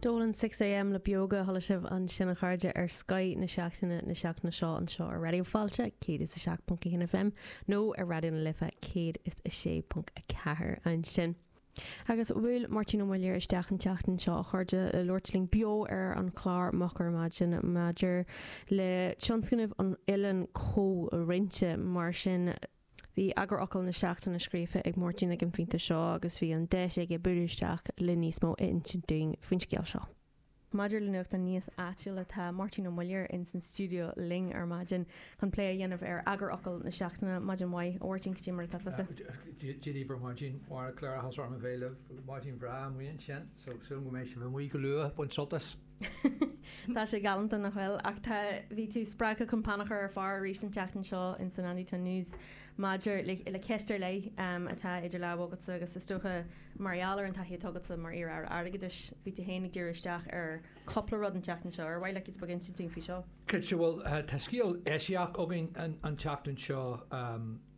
D'fhol ann 6am le Beoga, chuala sibh ansin a chairde ar Scoth na Seachtaine na seachtaine seo anseo ar Raidió Fáilte 107.1 FM nó ar Raidió na Life 106.4 ansin. Agus bhuail Máirtín Ó Muilleoir isteach an tseachtain seo a chairde le labhairt linn beo ar an chlár Moch ar Maidin maidir le tionscnamh an Oileáin Chomhroinnte. Mar sin Bhí eagarfhocal na seachtaine scríofa ag Máirtín ag an phointe seo agus bhí an deis aige bualadh isteach le níos mó a insint dúinn faoin scéal seo. Maidir le nuachtán níos áitiúla, tá Máirtín Ó Muilleoir ins an stiúideo linn ar maidin chun plé a dhéanamh ar eagarfhocal na seachtaine. Maidin mhaith, a Mháirtín, cad é mar atá tusa. Dia daoibh ar maidin. Mhair an cléireachas orm a bhéal libh. Maidin bhreá amuigh ansin, so súil go mbeidh sibh amuigh go luath ag baint sultais. Tá sé galánta nach bhfuil? Ach tá, bhí tú spreagtha chun peann a chur ar phár arís an tseachtain seo insan Andersonstown News maidir le ceist ar leith atá idir lámha agatsa agus is dócha mar gheall ar an taithí atá agatsa mar iar-aire airgeadais, bhí tú féin ag díriú isteach ar chúpla rud an tseachtain seo. Ar mhaith leat giota beag a insint dúinn faoi seo? Cinnte, bhuel, tá scéal eisiach againn an tseachtain seo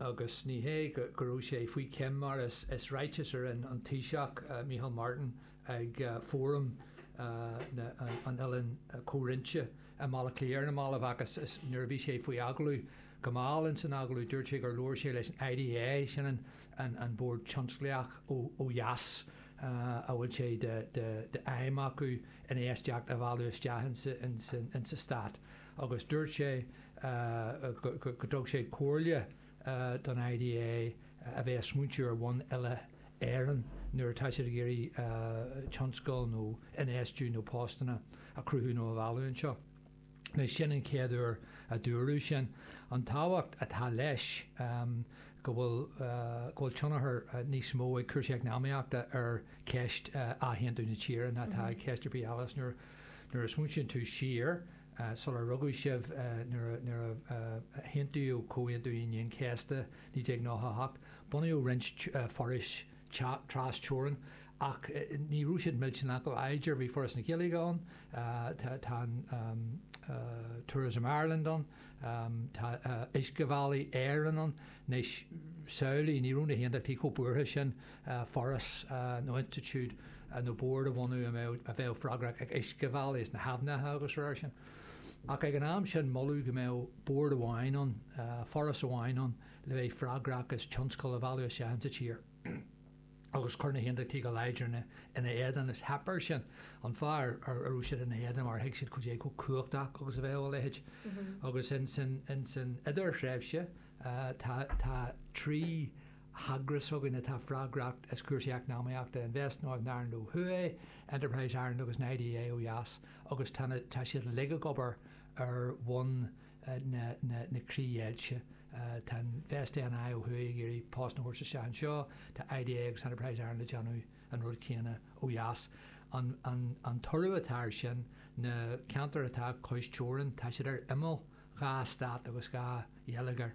agus ní hé go raibh sé faoi choim mar is ráiteas a rinne an Taoiseach, Micheál Martin, ag Fóram an Oileáin Chomhroinnte i mBaile Átha Cliath ar na mallaibh agus nuair a bhí sé faoi agallamh go mall ins an agallamh dúirt sé gur labhair sé leis an IDA, sin an Bord Tionsclaíoch ó dheas a bhfuil sé d'aidhm acu infheistíocht a mhealladh isteach ins an Stát, agus dúirt sé go dtug sé comhairle. don IDA a bheith ag smaointiú ar bhonn uile Éireann nuair atá siad ag iarraidh tionscal nó infheistiú nó postanna a chruthú nó a mhealladh anseo. Anois sin an chéad uair a dúradh sin. An tábhacht atá leis go bhfuil go bhfuil tionchar níos mó ag cúrsaí eacnamaíochta ar cheist athaontú na tíre ná atá ag ceist ar bith eile is nuair a smaointíonn tú siar sular rugadh sibh, nuair a haontaíodh Comhaontú Aoine an Chéasta 1998, bunaíodh roinnt forais tras-teorann, ach ní raibh siad millteanach go láidir. Bhí Foras na Gaeilge ann, tá Tourism Ireland ann, tá Uiscebhealaí Éireann ann, anois samhlaigh, ní raibh na hAontachtaí chomh buartha sin foras nó institiúid nó bord a bhunú a bheadh freagrach as uiscebhealaí is na haibhneacha agus a raibh air sin. Ach ag an am sin moladh go mbeadh bord amháin ann, foras amháin ann le bheith freagrach as tionscal a mhealladh isteach sa tír. Agus chuir na hAontachtaithe go láidir ina éadan is theip air sin. An fáth a raibh siad ina éadan mar thuig siad cad é chomh cumhachtach agus a bheadh a leithéid. Agus insan idirthréimhse tá trí heagras s'againn atá freagrach as cúrsaí eacnamaíochta, Invest Northern Ireland ó thuaidh, Enterprise Ireland agus na IDA ó dheas, agus tá siad uilig ag obair ar bhonn na críochdheighilte. Tá Invest NI ó thuaidh ag iarraidh postanna a thabhairt isteach anseo, tá IDA agus Enterprise Ireland ag déanamh an rud céanna ó dheas. An toradh atá air sin, na ceantair atá cois teorann, tá siad ar imeall, dhá stát agus dhá gheilleagar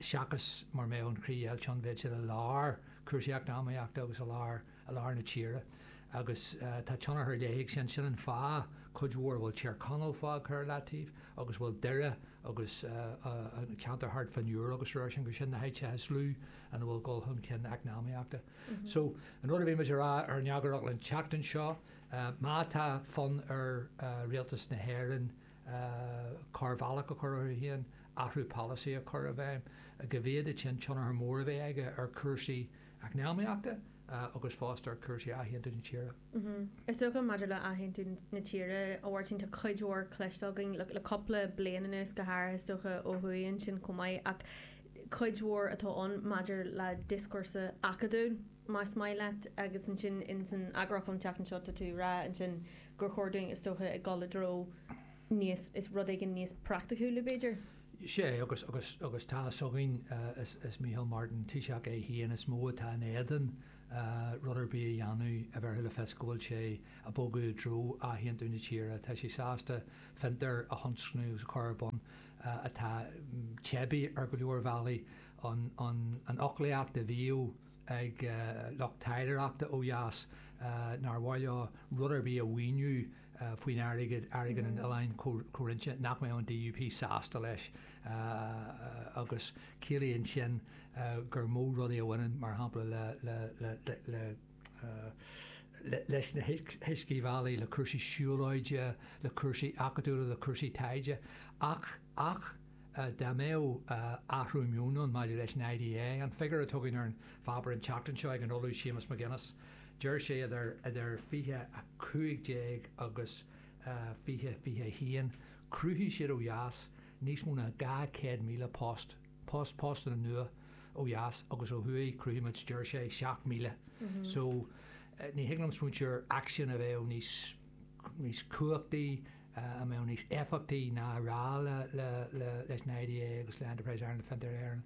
seachas mar a bheadh an chríochdheighilt, iad a bheith i lár cúrsaí eacnamaíochta agus i lár i lár na tíre. Agus tá tionchar ar leith ag sin. Sin an fáth, cuid mhór, a bhfuil Tír Chonaill fágtha ar leataobh agus a bhfuil Doire agus an ceantar thart fán Iúr agus araile, gur sin na háiteacha is lú ina bhfuil dul chun cinn eacnamaíochta. So, an rud a bhí muid a rá san eagarfhocal an tseachtain seo, má tá fonn ar rialtas na hÉireann, cor bhealaigh a chur orthu féin, athrú polasaí a chur i bhfeidhm, go bhféadfadh sin, tionchar mór a bheith aige ar chúrsaí eacnamaíochta agus fosta ar chúrsaí athaontú na tíre. Is dócha, maidir le athaontú na tíre, a Mháirtín, tá cuid mhór cloiste againn le cupla bliain anuas, go háirithe, is dócha, ó thuaidh ansin chomh maith, ach cuid mhór atá ann maidir le dioscúrsa acadúil, más maith leat, agus ansin ins an eagarfhocal an tseachtain seo tá tú ag rá ansin gur chóir dúinn, is dócha, ag dul i dtreo níos, rud éigin níos praiticiúla, b'fhéidir? Is é, agus, agus, agus tá fhios againn, is, is Micheál Martin, Taoiseach é féin, is mó atá in éadan rud ar bith a dhéanamh a bhéarfadh le fios go bhfuil sé ag bogadh i dtreo athaontú na tíre. Tá sé sásta fiontair a thionscnamh agus a chur ar bun atá teibí ar go leor bealaí, an, an, an fhoclaíocht a bhíodh, ag lucht taidhleoireachta ó dheas nár mhaith leo rud ar bith a mhaoiniú faoin airgead, airgead an oileáin chomhroinnte nach mbeadh an DUP sásta leis agus ciallaíonn sin gur mó rudaí a bhaineann, mar shampla, leis na huiscebhealaí, le cúrsaí siúlóide, le cúrsaí acadúla, le cúrsaí taighde ach. Ach dá mbeadh athrú meoin ann, maidir leis an IDA, an figiúr a tugadh ar an pháipéar an tseachtain seo ag an Ollamh Séamus McGuinness, deir sé idir 2015 agus 2021 chruthaigh siad ó dheas níos mó ná 200,000 post, post, postanna nua ó dheas agus ó thuaidh chruthaigh muid, deir sé, 7,000. So ní thig liom smaointiú ar aicsean a bheadh níos cumhachtaí, a mbeadh níos éifeachtaí ná a rá leis an IDA agus le Enterprise Ireland, Fiontar Éireann,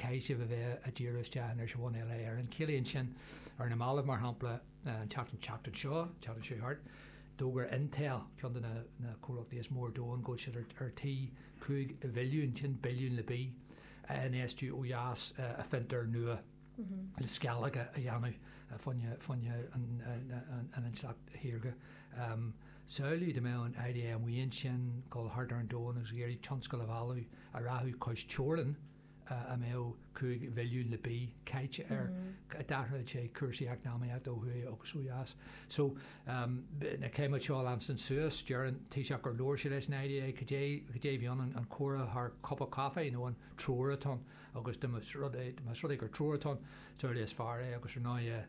Caithfidh sibh a bheith a' díriú isteach anois ar bhonn eile air. An gciallaíonn sin, ar na mallaibh, mar shampla, an tseachtain, tseachtain seo, tseachtain seo thart, d'fhógair Intel, ceann de na, na comhlachtaí is mó ar domhan, go bhfuil siad ar, ar tí cúig bhilliún, sin billiún le B, a infheistiú ó dheas i, i bhfiontar nua. le sceallóga a dhéanamh faoina n-intleacht shaorga. Samhlaigh dá mbeadh an IDA amuigh ansin, ag dul thart ar an domhan agus ag iarraidh tionscal a mhealladh, a rachadh cois teorann, a mbeadh cúig bhilliún le B caite air, d'athródh sé cúrsaí eacnamaíochta ó thuaidh agus ó dheas. So, na céimeanna seo a leanstan suas, deir an taoiseach gur labhair sé leis an IDA, cad é mar bhí ann, an comhrá thar cupán caife nó an treoir atá ann, agus da mba rud é, más rud é gur treoir atá ann, is amhlaidh is fearr é, agus ar ndóigh,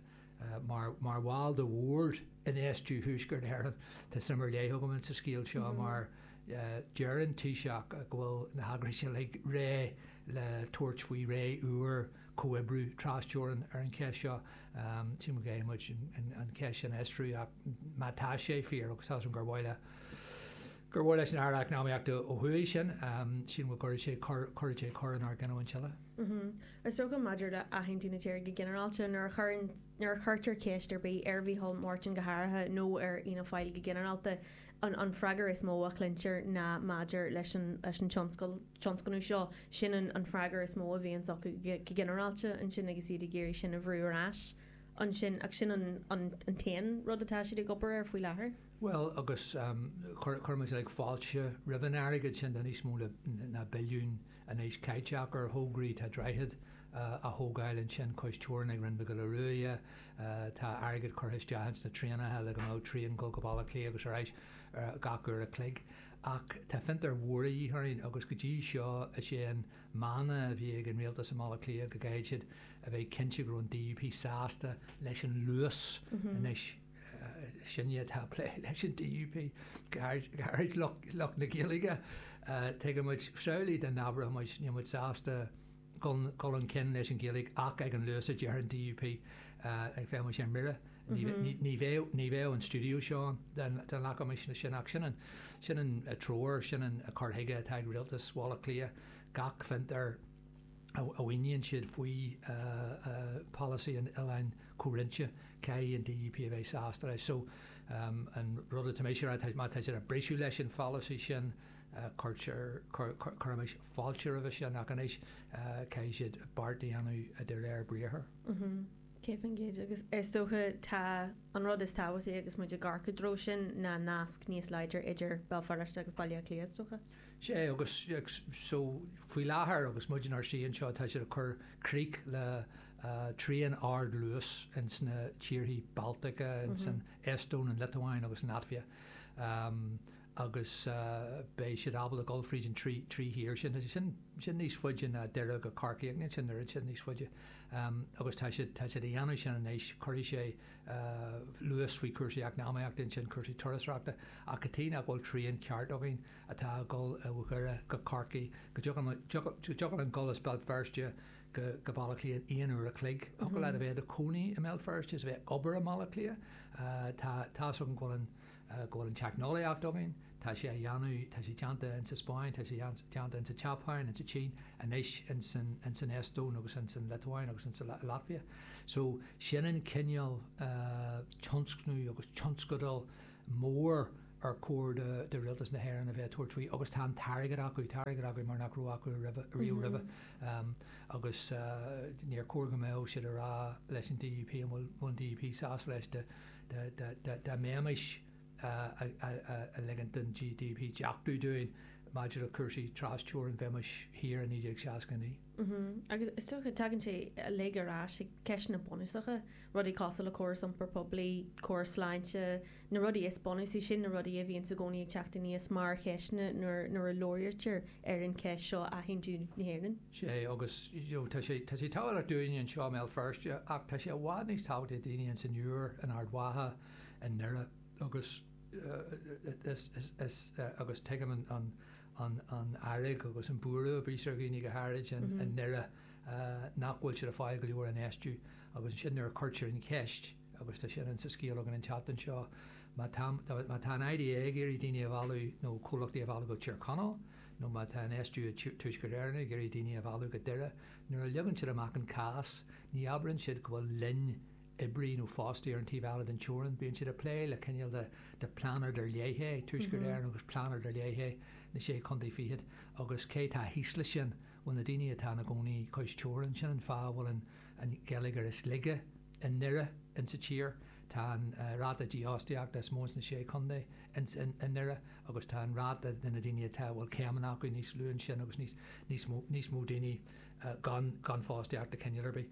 mar bhall de Bhord Infheistiú Thuaisceart Éireann, tá suim ar leith agam insa scéal seo, mar deir an Taoiseach go bhfuil na heagrais uilig réidh le tabhairt faoi ré úr comhoibrithe trasteorann ar an cheist seo. Sílim go bhféadfaidh muid an cheist sin a fhiosrú, ach má tá sé fíor, agus tá súil gur amhlaidh, i gcomhar leis an Aire Eacnamaíochta ó thuaidh sin, sílim go gcuirfidh sé cor, cuirfidh sé cor inár gcinniúint uile. Is dócha, maidir le athaontú na tíre go ginearálta, nuair a chuireann, nuair a chuirtear ceist ar bith ar Mhícheál Máirtin go háirithe nó ar Fhianna Fáil go ginearálta, an, an freagair is mó a chluintear ná maidir leis an, leis an tionscal, tionscnamh seo, sin an, an freagair is mó a bhíonns acu go ginearálta ansin agus iad ag iarraidh sin a bhrú ar ais ansin ach sin an, an, an t-aon rud atá siad ag obair air faoi láthair. Bhuel, agus chuir muid uilig fáilte roimh an airgead sin, tá níos mó ná billiún anois caite acu ar thograí, tá droichead á thógáil ansin cois teorann ag Rinn Mhic Giolla Ruaidhe, tá airgead curtha isteach ins na traenacha le go mbeadh traein ag dul go Baile Átha Cliath agus ar ais gach uair a chloig. Ach tá fiontair mhóra de dhíth orainn agus go dtí seo is é an mana a bhí ag an rialtas i mBaile Átha Cliath go gcaithfeadh siad a bheith cinnte go raibh an DUP sásta leis an luas anois. Sinne atá ag plé leis an DUP, go háirid lucht na Gaeilge. Tuigeann muid samhlaigh dá n-abródh muid, níl muid sásta dhul chun cinn leis an Ghaeilge ach ag an luas a deir an DUP ach bheadh muid ar mire. Ní bheadh an stiúideo seo ann dá nglacfaimis leis sin. Ach sin an treoir, sin an cur chuige atá ag rialtas Bhaile Átha Cliath, gach fiontar, a mhaoiníonn siad faoi pholasaí an Oileáin Chomhroinnte, caithfidh an DUP a bheith sásta leis. So, an rud atá mise a rá, má tá siad ag briseadh leis an pholasaí sin, cuirtear, cuirimis fáilte roimhe sin, ach anois, caithfidh siad beart a dhéanamh de réir briathar. Agus is dócha, tá, an rud is tábhachtaí agus muid ag amharc i dtreo sin ná nasc níos láidre idir Béal Feirste agus Baile Átha Cliath, is dócha? sé agus so faoi láthair agus muid inár suí anseo tá siad ag cur crích le traein ardluais ins na tíorthaí Baltacha ins an Eastóin, an Liotuáin agus an Laitvia agus beidh siad ábalta dul fríd an trí thír sin agus sin níos faide ná Doire go Corcaigh agus sin oiread sin níos faide agus tá siad ag dhéanamh sin anois cuirfidh sé luas faoi chúrsaí eacnamaíochta, ansin cúrsaí turasóireachta, ach cad chuige nach bhfuil traein cheart againn atá ag dul ó Dhoire go Corcaigh, go dtiocfadh linn dul as Béal Feirste go Baile Átha Cliath in aon uair a chloig, thiocfadh leat a bheith i do chónaí i mBéal Feirste is a bheith ag obair i mBaile Átha Cliath, tá's agam go bhfuil an. go bhfuil an teicneolaíocht againn, tá sé á dhéanamh, tá sé déanta in sa Spáinn, tá sé déanta in sa tSeapáin, in sa tSín, anois in san, in san Eastóin agus in san Liotuáin agus in sa Laitvia. So, sin an cineál tionscnamh agus tionscadal mór ar chóir do, do Rialtas na hÉireann a bheith ag tabhairt faoi agus tá an t-airgead acu, tá airgead acu mar nach raibh acu roimhe, riamh roimhe. Agus níor chóir go mbeadh siad a rá leis an DUP, an bhfuil, an bhfuil an DUP sásta leis, do, dá mbeimis a' ligint don DUP deachtú dúinn maidir le cúrsaí tras-teorann, bheimis thiar i 1969. Agus is dócha, tagann sé uilig ar ais ag ceisteanna bunúsacha, rudaí cosúil le córas iompar poiblí, córas sláinte, na rudaí is bunúsaí, sin na rudaí a bhíonns i gcónaí ag teacht aníos mar cheisteanna nuair a labhraítear ar an cheist seo a athaontú na hÉireann. sé agus tá sé tá sé tábhachtach dúinn anseo i mBéal Feirste ach tá sé i bhfad níos tábhachtaí do dhaoine ins an Iúr, in Ard Mhacha, i nDoire agus is is agus tuigim an an an fhearg agus an buaireamh a bíos ar dhaoine go háirid i nDoire nach bhfuil siad ag fáil go leor infheistiú agus ansin nuair a cuirtear an cheist. agus tá sin ann sa scéal againn an tseachtain seo, má tá an IDA ag iarraidh daoine a mhealladh nó comhlachtaí a mhealladh go Tír Chonaill, nó má tá an SDU i dTuaisceart Éireann ag iarraidh daoine a mhealladh go Doire, nuair a leagann siad amach an cás, ní abrann siad go bhfuil linn oibrithe nó fostaithe ar an taobh eile den teorainn, bíonn siad ag plé le cineál de pláinéad ar leith é Tuaisceart Éireann agus pláinéad ar leith é na Sé Chontae Fichead, agus cé tá thíos le sin? Bhuel, na daoine atá ina gcónaí cois teorann, sin an fáth a bhfuil an. an geilleagar is laige i nDoire insa tír, tá an ráta dífhostaíochta is mó insna Sé Chontae i nDoire agus tá an ráta de na daoine atá, a bhfuil céimeanna acu, níos lú ansin agus níos, níos mó, níos mó daoine gan, gan fostaíocht de chineál ar bith.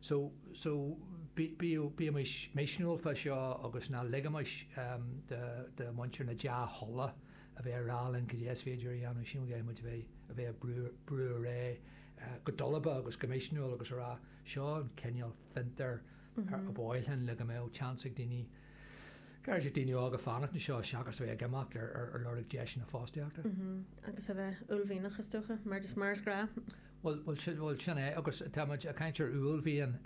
So, so bíodh, bímis misniúil fá seo agus ná ligimis do, do mhuintir na dea-thola a bheith a' rá linn cad é is féidir a dhéanamh, siúl, muid a bheith, a bheith a' brú, brú ar aghaidh. go dalba agus go misniúil agus a rá, Seo an cineál fiontair ar mhaith linn le go mbeadh tseans ag daoine, go háirithe daoine óga, fanacht anseo seachas a bheith ag imeacht ar lorg deiseanna fostaíochta. Agus a bheith uaillmhianach, is dócha, mar is mar is gnáth. Bhuel, sin é, agus táimid ag caint ar uaillmhian.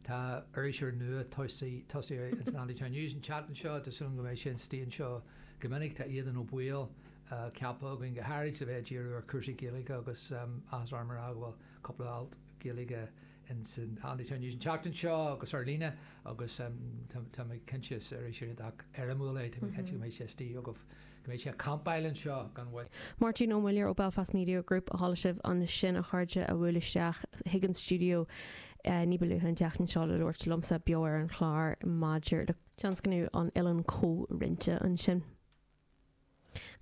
Tá iriseoir nua tosaithe ins an Andytown News, an tseachtain seo, agus tá súil agam go mbeidh sé istigh anseo go minic. Tá Aodhán Ó Baoill ceaptha againn go háirid le bheith ag díriú ar chúrsaí Gaeilge agus áthas orm a rá go bhfuil cúpla alt Gaeilge ins an Andytown News an tseachtain seo agus ar líne agus tá mé cinnte, is iriseoir iontach éirimiúil é, tá mé cinnte go mbeidh sé istigh agaibh, go mbeidh sé ag campáil anseo gan mhoill. Máirtín Ó Muilleoir ó Belfast Media Group a chuala sibh ansin a chairde a bhuail isteach chuig an stiúideo ní ba luaithe an tseachtain seo le labhairt liomsa beo ar an chlár maidir le tionscnamh an Oileáin Chomhroinnte ansin.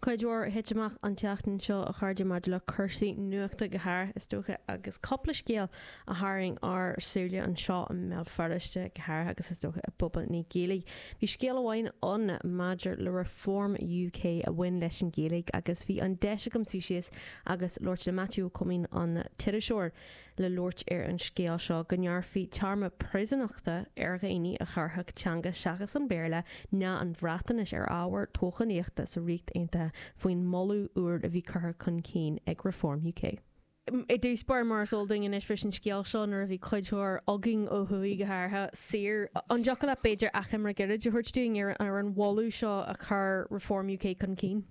Cuid mhór a thit amach an tseachtain seo, a chairde, maidir le cúrsaí nuachta go háirithe, is dócha, agus cúpla scéal a tharraing ár súile anseo i mBéal Feirste go háirithe agus, is dócha, i bpobal na Gaeilge. Bhí scéal amháin ann maidir le Reform UK a bhain leis an Ghaeilge agus bhí an deis agam suí síos agus labhairt le Maitiú Ó Coimín, an t-iriseoir, le labhairt ar an scéal seo, go ngearrfaí téarma príosúnachta ar dhaoine a chuirfeadh teanga seachas an Béarla ná an Bhreatainis ar ábhar toghchánaíochta sa Ríocht Aontaithe faoin moladh úr a bhí curtha chun cinn ag Reform UK. I dtús báire, mar is eol dúinn anois, bhris an scéal seo nuair a bhí cuid mhór againn, ó thuaidh go háirithe, saor. An dtiocfadh leat, b'fhéidir, achoimre gairid a thabhairt dúinn ar an mholadh seo a chuir Reform UK chun cinn?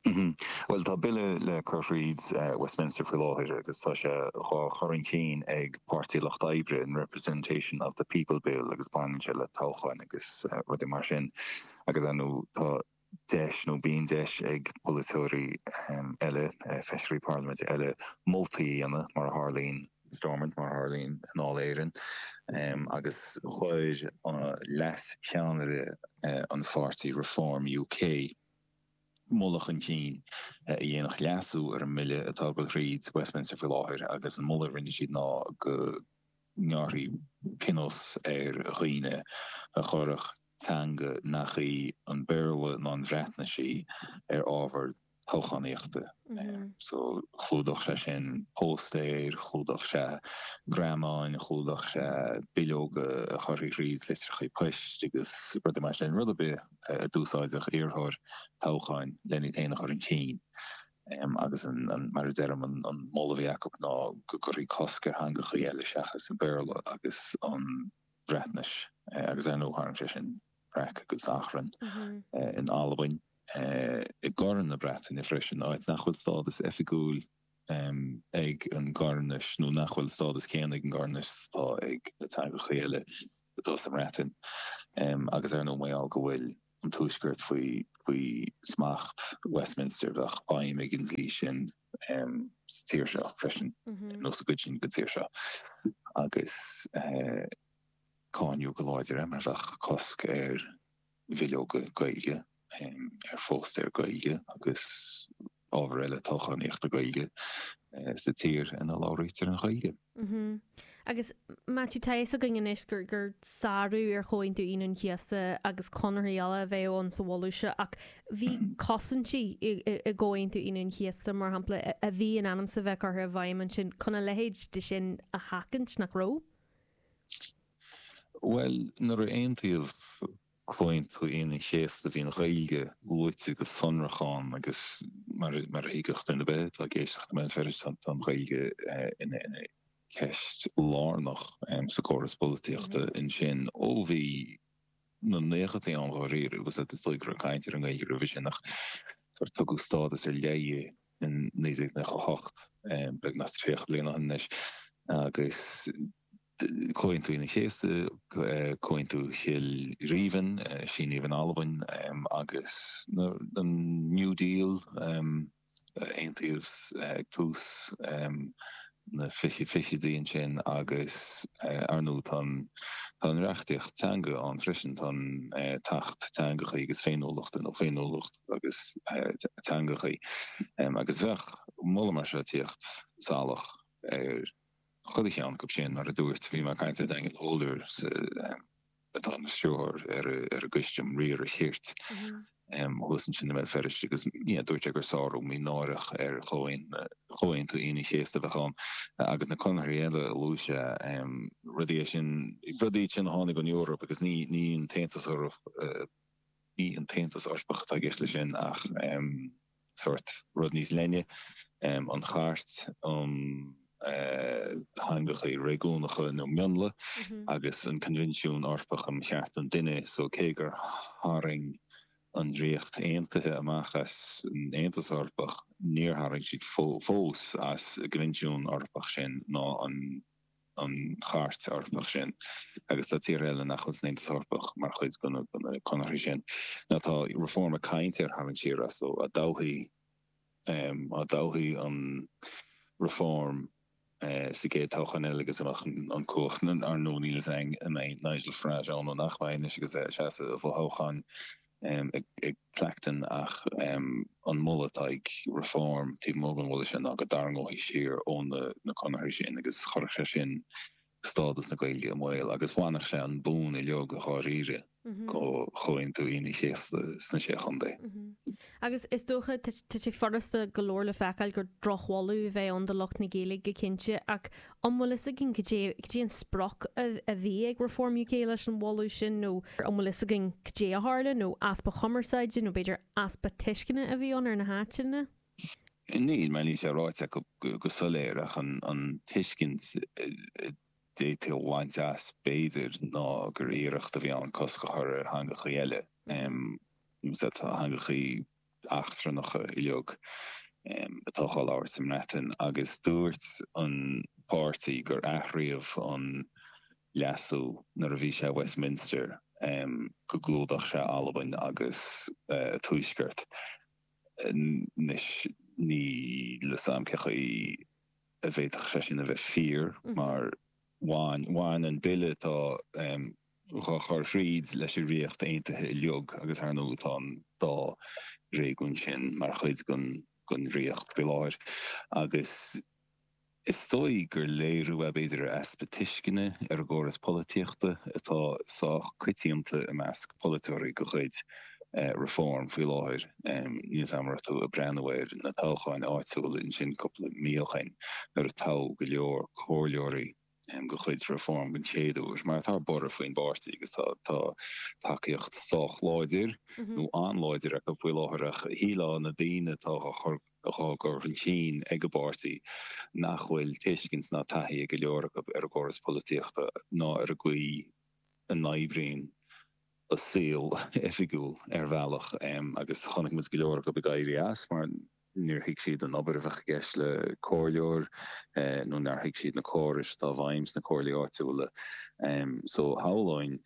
Bhuel, tá bille le cur thríd Westminster faoi láthair agus tá sé dhá chur chun cinn ag Páirtí an Lucht Oibre, an Representation of the People Bill, agus baineann sé le toghcháin agus rudaí mar sin. Agus ar ndú tá deis, nó bíonn deis, ag polaiteoirí eile, feisirí parlaiminte eile, moltaí a dhéanamh, mar a tharlaíonn in Stormont, mar a tharlaíonn i nDáil Éireann. Agus chuir leascheannaire an pháirtí, Reform UK, moladh chun cinn a dhéanfadh leasú ar an mbille atá ag dul thríd Westminster faoi láthair agus an moladh a rinne siad ná go ngearrfaí pionós ar dhaoine a chuirfeadh teanga nach í an Béarla ná an Bhreatnais í ar ábhar toghchánaíochta. So, chlúdódh sé sin póstaeir, chlúdódh sé grianghraif, chlúdódh sé bileoga a chuirtí thríd, litreacha poist agus rudaí mar sin, rud ar bith. a d'úsáideadh iarrthóir toghcháin lena fhéin a chur chun cinn agus mar a deirim an moladh a bhí acu ná go gcuirfí cosc ar theangacha eile seachas an Béarla agus an Bhreatnais agus ar ndóigh tharraing sé sin raic agus achrann in Albain, i gCorn na Breataine freisin, áit nach bhfuil stádas oifigiúil ag an gCoirnis nó nach bhfuil an stádas céanna ag an gCoirnis is atá ag na teangacha eile atá sa mBreatain, agus ar ndóigh mar gheall go bhfuil an Tuaisceart faoi smacht Westminster, bheadh feidhm ag an dlí sin sa tír seo freisin, nó sa gcuid sin den tír seo, agus cáineadh go láidir é mar bheadh cosc ar bhileoga Gaeilge, ar phóstaeir Gaeilge agus ábhar eile toghchánaíochta Gaeilge sa tír ina labhraítear an Ghaeilge. Agus Maitiú, tá a fhios againn anois gur sárú ar Chomhaontú Aoine an Chéasta agus conarthaí eile a bheadh ann sa mholadh seo, ach bhí cosaintí i gComhaontú Aoine an Chéasta, mar shampla, a bhí in ainm's a bheith curtha i bhfeidhm ansin chun a leithéid de sin a sheachaint, nach raibh? Bhuel, nuair a aontaíodh Comhaontú Aoine an Chéasta bhí an Ghaeilge luaite go sonrach ann agus mar a thuigfeadh duine ar bith atá ag éisteacht i mBéal Feirste tá an Ghaeilge ina ceist lárnach sa gcóras polaitíochta ansin ó bhí na naochadaí ann dháiríre agus is dóigh go raibh caint ar an nGaeilge roimhe sin ach gur tugadh stádas ar leith di in 1998, beagnach tríocha bliain ó shin anois, agus Comhaontú Aoine an Chéasta, Comhaontú Chill Rímhinn, a síníodh in Albain, agus an New Deal. a aontaíodh ag tús na fichidí ansin agus ar ndú tá an reachtaíocht teanga ann freisin, tá an tAcht Teangachaí agus Féiniúlachta nó Féiniúlacht agus Teangachaí agus bheadh moladh mar seo tíocht salach ar chuile cheann acu sin. Mar a dúirt, bhí mé ag caint le Daniel Holder sa. atá ina stiúrthóir ar an gCoiste um Riar an Chirt thuas ansin i mBéal Feirste agus dúirt sé gur sárú mínáireach ar Chomhaontú Aoine an Chéasta a bheadh ann agus na conarthaí eile a luaigh sé. Rudaí iad sin, rudaí iad sin a tháinig ón Eoraip agus ní an tAontas, ní an tAontas Eorpach atá i gceist leis sin ach, sórt rud níos leithne, an Chairt um Theangacha Réigiúnacha nó Mionlaigh agus an Coinbhinsiún Eorpach um Chearta an Duine, so cé gur tharraing an Ríocht Aontaithe amach as an Aontas Eorpach, níor tharraing siad fós as an gCoinbhinsiún Eorpach sin ná an. an Chairt Eorpach sin, agus tá tíortha eile nach bhfuil san Aontas Eorpach mar chuid de na conarthaí sin, ach tá Reform ag caint ar tharraingt siar astu, dá dtoghfaí, dá dtoghfaí Reform sa gcéad toghchán eile agus a mbeadh an chumhacht. Ar ndóigh, níl a fhios a'inn an mbeidh Nigel Farage ann nó nach mbeidh anois agus é ag seasamh i bhfothoghchán. i gClacton ach an moladh atá ag Reform taobh amuigh den mholadh sin ná go dtarraingeofaí siar ó na conarthaí sin agus chuirfeadh sé sin stádas na Gaeilge i mbaol agus bhainfeadh sé an bonn uiliog a dháiríre ó Chomhaontú Aoine an Chéasta sna Sé Chontae. Agus is dócha, tá sé furasta go leor le feiceáil gur drochmholadh a bheadh ann do lucht na Gaeilge go cinnte ach An bhfuil fhios againn cad é an sprioc a bhí ag Reform UK leis an mholadh sin nó an bhfuil fhios againn cad é a tharla nó easpa chumarsáide nó b'fhéidir easpa tuisceana a bhí ann ar na háiteanna? Níl, mar níl sé ráite acu go soiléir ach an tuiscint a d'fhéadfaí a bhaint as b'fhéidir ná gur iarracht a bhí ann cosc a chur ar theangachaí eile, na teangachaí eachtrannacha uilig atá dhá labhairt sa mBreatain agus dúirt an páirtí gur athríomh an leasú nuair a bhí sé i Westminster go gclúdódh sé Albain agus an tuaisceart. Anois níl fhios agam cé chaoi a bhféadfadh sé sin a bheith fíor mar bhain an bille atá dhá chur thríd leis an Ríocht Aontaithe uiliug, agus ar ndóigh tá an dá réigiún sin mar chuid den Ríocht faoi láthair, agus is dóigh gur léiriú é b'fhéidir ar easpa tuisceana ar an gcóras polaitíochta atá sách coitianta i measc polaiteoirí de chuid Reform faoi láthair. Níl 's am a raibh tú ag breathnú ar na toghcháin áitiúla ansin cúpla mí ó shin nuair a toghadh go leor comhairleoirí, go cuid Reform don chéad uair, mar tá borradh faoin bpáirtí agus tá tacaíocht sách láidir nó an-láidir acu faoi láthair, ach shílfeá na daoine atá dhá gcur chun cinn ag an bpáirtí nach bhfuil tuiscint ná taithí ag go leor acu ar an gcóras polaitíochta ná ar an gcaoi a n-oibríonn an saol oifigiúil ar bhealach agus chonaic muid go leor acu ag éirí as mar níor thuig siad an obair a bheadh i gceist le comhairleoir nó nár thuig siad na córais atá i bhfeidhm sna comhairlí áitiúla so shamhlóinn,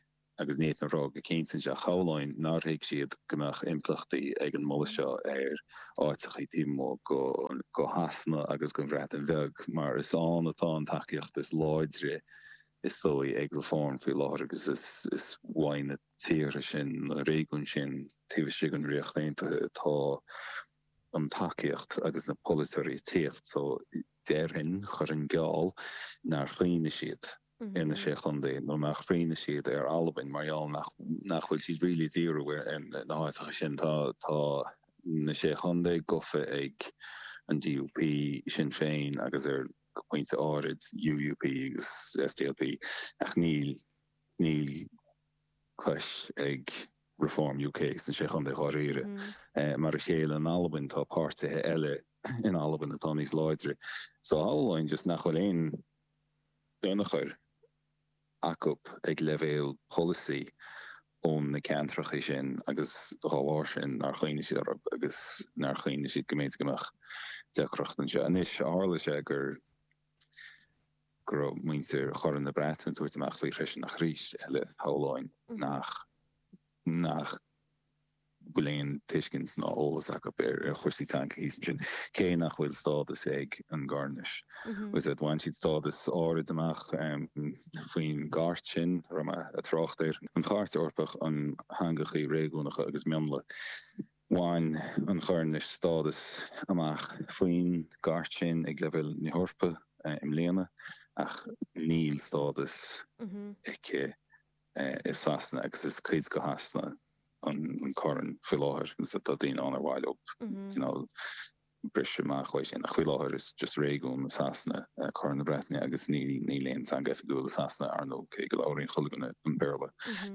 agus ní fhéadfainn a rá go cinnte anseo, shamhlóinn nár thuig siad go mbeadh impleachtaí ag an moladh seo ar áiteachaí taobh amuigh de Shasana agus den Bhreatain Bheag mar is ann atá an tacaíocht is láidre is dóigh, ag Reform faoi láthair agus is uaidh na tíortha sin, na réigiúin sin taobh istigh den Ríocht Aontaithe atá an tacaíocht agus na polaiteoirí ag tíocht so déarfainn, chuirfinn geall, nár chuimhnigh siad ar na Sé Chontae nó nár chuimhnigh siad ar Albain mar gheall nach bhfuil siad really ag díriú ar na háiteacha sin. Tá na Sé Chontae gofa ag an DUP, Sinn Féin agus ar. go pointe áirid, UUP agus SDLP, ach níl níl cois ag Reform UK sna Sé Chontae dháiríre. Mar a chéile in Albain, tá páirtithe eile in Albain atá níos láidre. So shamhlóinn just nach bhfuil aon ionchur. acu ag leibhéal polasaí ó na ceantracha sin agus dá bharr sin nár chuimhnigh siad orthu agus nár chuimhnigh siad go mb'fhéidir go mbeadh deacracht anseo anois. Tharla sé gur go raibh muintir Chorn na Breataine ag tabhairt amach faoi freisin ach arís eile shamhlóinn nach nach bhfuil aon tuiscint ná eolas acu ar chúrsaí teanga thíos ansin, cé nach bhfuil stádas ag an gCoirnis, agus bhain siad stádas áirid amach faoin gCairt sin, a raibh mé ag trácht air, an Chairt Eorpach um Theangachaí Réigiúnacha agus Mionlaigh. Bhain an Choirnis stádas amach faoin gCairt sin ag leibhéal na hEorpa i mbliana, ach níl stádas aici i Sasana agus is cuid de Shasana an Corn faoi láthair agus tá daoine ann ar mhaith leo cineál briseadh amach uaidh sin ach faoi láthair is just réigiún i Sasana é Corn na Breataine agus níl aon teanga oifigiúil i Sasana ar ndóigh cé go labhraíonn chuile dhuine an Béarla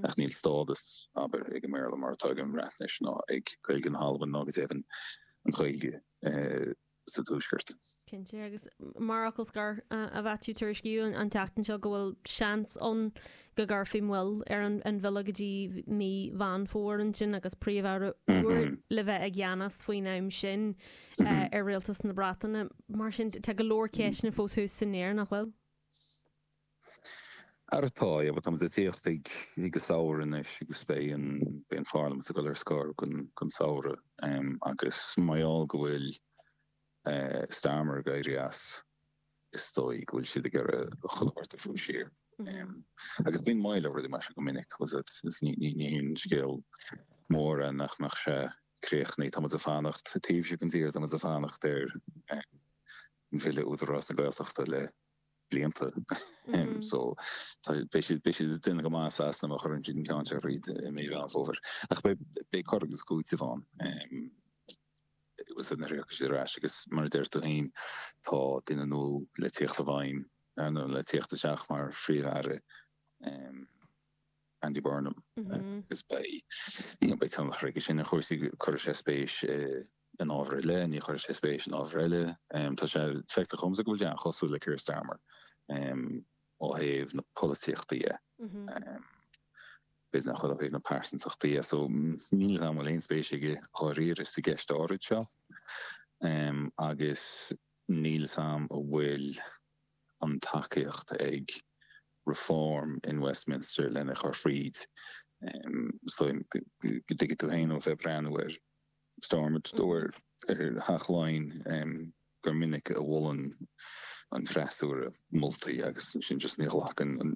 ach níl stádas abair ag an mBéarla mar atá ag an mBreatnais ná ag Gaeilge na hAlban ná go deimhin ag an nGaeilge i sa Tuaisceart. Cinnte, agus mar fhocal scoir, a Mhaitiú, tuairiscíodh an tseachtain seo go bhfuil seans ann go gcuirfí moill ar an bhille go dtí mí Mheán Fómhair ansin agus Príomh-Aire úr le bheith i gceannas faoin am sin ar Rialtas na Breataine. Mar sin, tá go leor ceisteanna fós thuas san aer, nach bhfuil? ar atá, yeah, but tá muid ag tíocht ag an samhradh anois agus beidh an, beidh an pharliamint ag dul ar scor don, don samhradh ehm agus mar gheall go bhfuil eh Starmer ag éirí as, is dóigh go bhfuil siad ag iarraidh chuile shórt a bhrú siar ehm agus bíonn moill ar rudaí mar sin go minic agus ní, ní, ní haon scéal mór é nach, nach mbeidh sé críochnaithe, tá muid ag fanacht taobh istigh den tír, tá muid ag fanacht ar eh an mBille Údarás na Gaeltachta le blianta. So beidh siad beidh siad ag déanamh go maith i Sasana má chuireann siad an ceann seo thríd i mí Mheán Fómhair. Ach beidh beidh cur agus cúiteamh ann arís nuair a thiocfaidh siad ar ais agus mar a deir tú fhéin tá duine nua le teacht i bhfeidhm nó le teacht isteach mar Phríomh-Aire. Andy Burnham, agus beidh tionchar aige sin ar chúrsaí. Cuirfidh sé spéis in ábhair eile, ní chuirfidh sé spéis in ábhair eile. Tá sé feicthe dhomsa go bhfuil sé an-chosúil le Keir Starmer ó thaobh na polaitíochta dhe. B'fhéidir nach bhfuil ó thaobh na pearsantachta dhe. So, níl a fhios agam an bhfuil aon spéis aige dháiríre sa gceist áirid seo agus níl a fhios agam an bhfuil an tacaíocht ag Reform in Westminster lena chur thríd. So tuigfidh tú féin ó bheith ag breathnú ar Stormont nó ar Theach Laighean gur minic a mholann an freasúra moltaí agus ansin just ní ghlacann an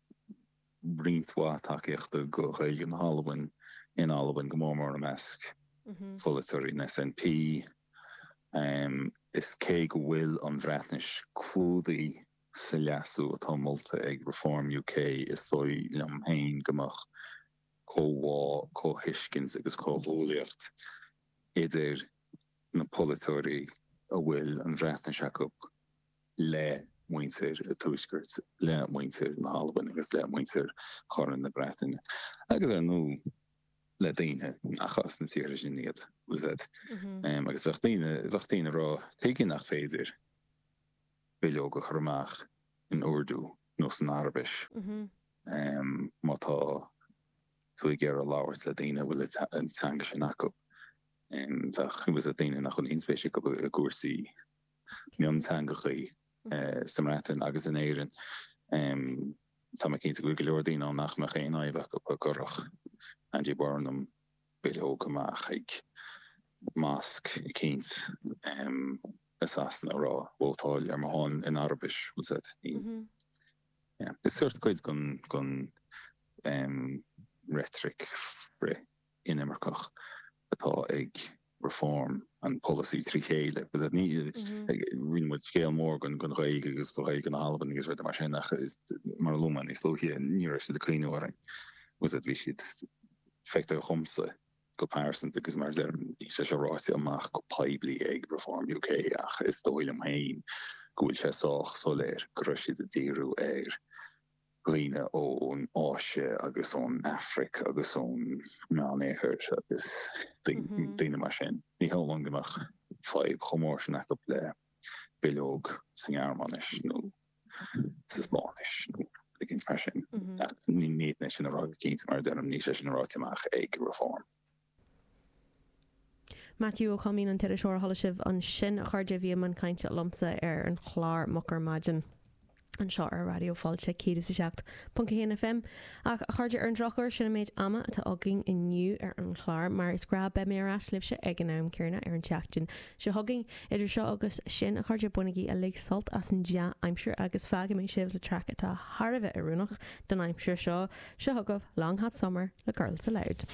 roinnt mhaith tacaíochta do Ghaeilge na hAlbain in Albain, go mór mór i measc pholaiteoirí an SNP. Is cé go bhfuil an Bhreatnais clúdaithe sa leasú atá molta ag Reform UK, is dóigh liom féin go mbeadh comhbhá, comhthuiscint agus comhghuaillíocht idir na polaiteoirí a bhfuil an Bhreatnais acu, le muintir an Tuaiscirt, le muintir na hAlban agus le muintir Chorn na Breataine, agus ar ndóigh le daoine nach as na tíortha sin iad. Agus bheadh daoine, bheadh daoine ag rá, tuige nach féidir bileog a chur amach in Urdu nó san Araibis má tá tú ag iarraidh labhairt le daoine a bhfuil an teanga sin acu. Bheadh, bheadh daoine nach bhfuil aon spéis acu i gcúrsaí mionteangacha sa mBreatain agus in Éirinn. Tá mé cinnte go bhfuil go leor daoine ann nach mbeadh aon fhadhb acu go gcuirfeadh Andy Burnham bileog amach ag mosc eicínt i Sasana a rá, Vótáil ar mo shon in Araibis, she said. Is sórt cuid den reitric frith. inimirceach atá ag Reform, an polasaí trí chéile. rinne muid scéal mór den den Ghaeilge agus de Ghaeilge na hAlban agus rudaí mar sin ach mar a luaigh mé níos luaithe ní raibh siad ag cuimhniú orainn. You see bhí siad feictear dhomsa go pearsanta agus mar a deirim níl sé seo ráite amach go poiblí ag Reform UK ach is dóigh liom féin go bhfuil sé sách soiléir go raibh siad ag díriú ar dhaoine ón Áise agus ón Afraic agus ón Meánoirthear agus daoine mar sin, ní cheapaim go mbeadh fadhb chomh mór sin acu le bileog sa nGearmáinis nó sa Spáinnis nó rud eicínt mar sin. Ní féidir é sin a rá go cinnte, mar a deirim, níl sé sin ráite amach ag Reform. Maitiú Ó Coimín, an t-iriseoir a chuala sibh ansin, a chairde, a bhí ag caint liomsa ar an chlár Moch ar Maidin anseo ar Raidió Fáilte 107.1 FM, ach, a chairde, ar an drochuair, sin an méid ama atá againn inniu ar an chlár, mar is gnáth, beidh mé ar ais libhse ag an am céanna ar an tseachtain seo chugainn. Idir seo agus sin, a chairde, bainigí uilig sult as an dea-aimsir agus fágfaidh mé sibh le traic atá thar a bheith oiriúnach don aimsir seo. Seo chugaibh Long Hot Summer le Girls Aloud.